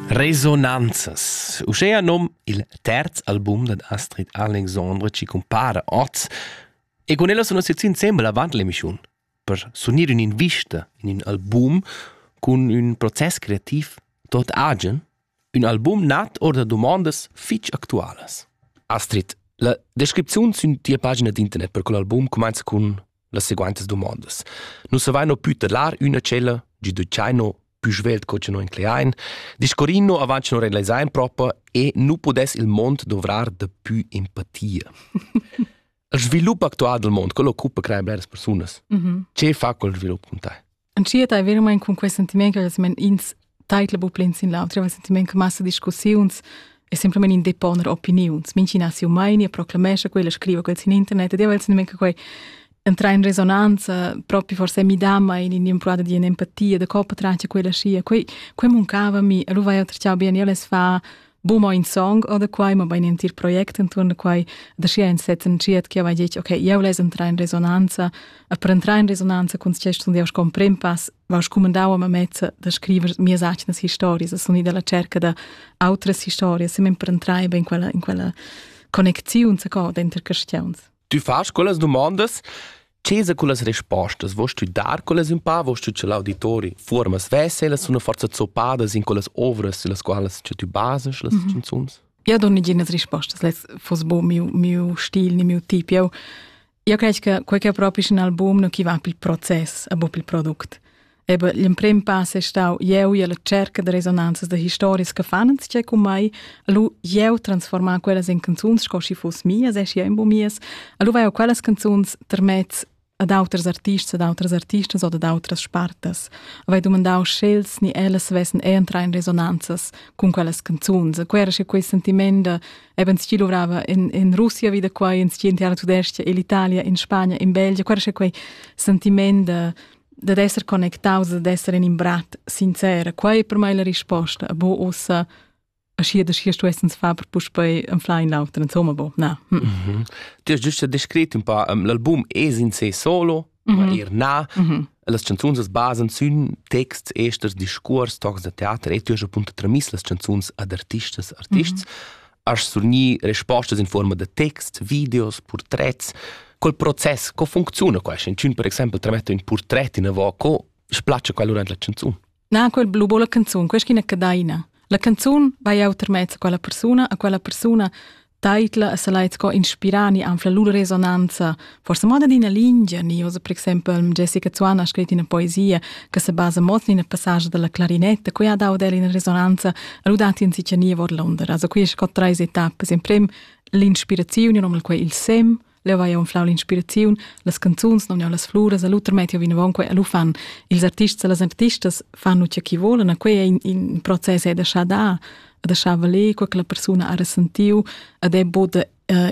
Resonanzas. Uschea nom il terz album dad Astrid Alexandre ci compara oz e con ella sono sezzi insembel avant l'emissiun per sunir un'invista in un album con un proces creativ tot agen, un album nat or da domandas fitch actualas. Astrid, la descripziun sün tia pagina d'internet per quell'album comenza cun las seguaintas dumondas. Nus avaino pü tedlar üna tschella, gi duciaino pü svelt co cha noi incleain, discorrino avant cha noi realisain propa e nu pudess il mond dovrar da pü empatia. Il svilup actual del mond, quello occupa creare bleras persunas. Mm -hmm. Ce fa col svilup con te? Entschiet ei veramein cun quei sentiment che ins teitla bu plein sin l'autra, il sentiment che massa discussiuns e semplamein in deponer opiniuns. Mincina siu meini e proclamesce quella, scriva quels in internet ed io il sentiment che quei entra in resonanza proprio forse mi dà mai in impruada di empatia da copa tranche quella scia quei quei mancava mi e lu vai otr ciao bien io les fa bu mo in song oder quai ma bein entir project inturn da quai da sia in set entschiet che va ditg okay eu les entrar in resonanza a per entrar in resonanza con ce sun eu con prempass va scumandau a mezza da scriver mia sacnas historias sun i dalla cerca da outras historias sem per entrar ben quella in quella connecziun sa co denter questions Tu fas quellas dumondas? Che sa quellas respostas vuoi stuidar quellas un pa vuoi stuir l'auditori fuormas veselas una forza zoppadas in quellas ovras las qualas che tu bases las mm -hmm. canzuns? Eu do niginas respostas, les fos bo miu miu stil ni miu tip. Eu eu credo che quel che è proprio un album non chi va pil proces, a bo pil product. Ebe l'emprim pass è stau jeu e la cerca da resonanzas da historias che fan uns che con mai lu jeu transformar quellas in canzuns sco si fuss mias e si ein bu mies lu vai quellas canzuns termets ad auters artists ad autras artistas oder ad autras spartas vai domandau schels ni ellas vessen entrar in resonanzas con quellas canzuns quera che quei sentiment da eben sti luvrava in in Russia wieder quai in sti in Tudestia in Italia in Spagna in Belgien quera che quei sentiment da dad esser connectaus e d'esser in imbrat sincer, quei è per me la risposta, bo ussa aschi da schi stuessens fa per puspei anfla in l'auter, insomma, bo, na. Hm. Mm -hmm. Ti has giusto descrit un po', um, l'album es in sé solo, mm -hmm. er na, mm -hmm. las canzuns as basan sün texts, esters, discurs, tocs da teater, e tu hast appunto tramis las canzuns ad artistas, artists. Mm -hmm. Has surgnì respostas in forma da text, videos, portrets. Quel process, co funcziona questo? In per exempel trametta un portret in avo, co splace quel durante la canzone? Na, quel blu la canzone, questa è una cadaina. La canzone vai a termez a quella persona, a quella persona taitla e se lai co inspirani anfla lur resonanza Forsa moda d'ina lingia ni usa per exempel Jessica Zuan ha scrit ina poesia che se basa mo in ina passage della clarinetta, qui ha dau del in resonanza rudati in sicania vor Londra. Also qui scott treis etappe, in prem l'inspirazione non quei il sem, leu vai un flau l'inspirazione, las canzuns non las fluras, all'uter metio vinavonque all'ufan. Ils artists e las artistas fanno ciò che vogliono, quei è in, in processo da sha da, da sha valer, quella persona ha ressentiu, ed è bod uh,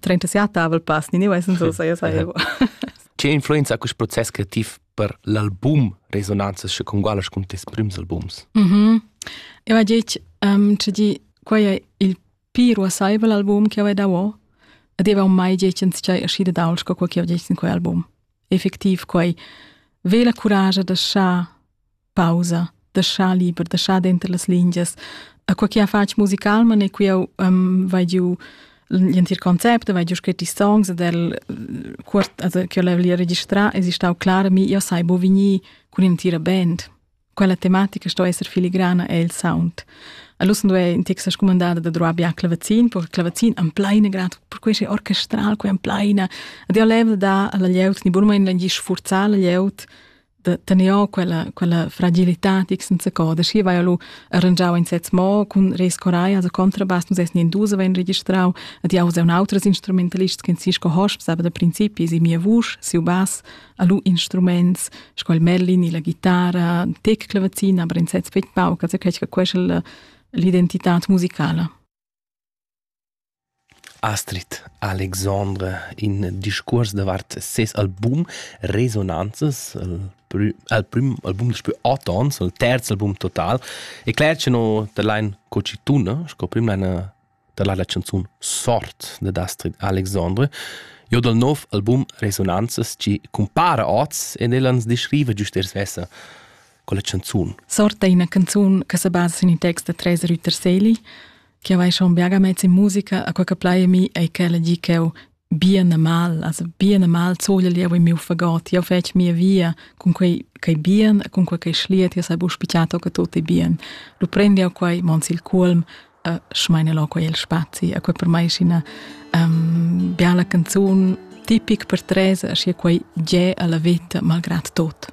37 avel pass, ni ne vai senso sai sai. Che influenza quest process creativ per l'album resonanzas che con gualas con tes prims albums? Mhm. Mm Eu ha detto um, di quai è il più rossaivel album che ho dato ed avevo mai detto in c'è uscita da Ulsco quel che ho detto in quel album. Effettiv quai vela courage da lasciar pausa, deschà liber, deschà denter las lingias. E quei che ha fatg musicalman e qui eu um, vai giu l'entir concept, vai giu scrit i songs ed el quart also che ho li registrà es stau clar mi io sai bo vegni cun intira band. Quella tematica sto esser filigrana e il sound. All'ussen due in texa scumandada da droa bia clavazin, per clavazin am plaina grad, per quei sei orchestral, quei am plaina. Ed io level da alla lieut ni burma in langi sfurzar la lieut de tener o quella quella fragilità tic senza coda schi vai lu arrangiau in sez mo cun rescorai as a contrabas nus es in dus ven registrau ad jau un autres instrumentalists che Cisco Hosp sabe da principi si mia vusch siu bass a lu instruments sco il merlin la chitarra tec clavazina aber in sez pet pau che quel quella l'identità musicala Astrid Alexandre in discuors davart ses album Resonanzas, il prüm al prüm album daspü ot ons, il terz album total, e cler cha no da lain co chi tuna sco prüm laina da la la chanzun Sort dad Astrid Alexandre. Jo dal nouv album Resonanzas chi cumpara oz ed ella ans dischriva güst er svessa quella chanzun. Sort è ina canzun che sa basa sin il text da Tresa Rütter-Seli, Che vai schon biaga mezz in musica, a quel che plai mi ei quella gi ch'eu bien e mal, also bien e mal zogel jeu in miu fagot, jeu fetg mia via cun quei quei bien, cun quei quei schliet, jeu sai bu spichiato che tutto è bien. Lu prendi eu quei mons il culm, e schmeine lo quei il spazi, a quei per mai ina um, biala canzun tipic per Teresa, aschi quei ge alla vita malgrat tot.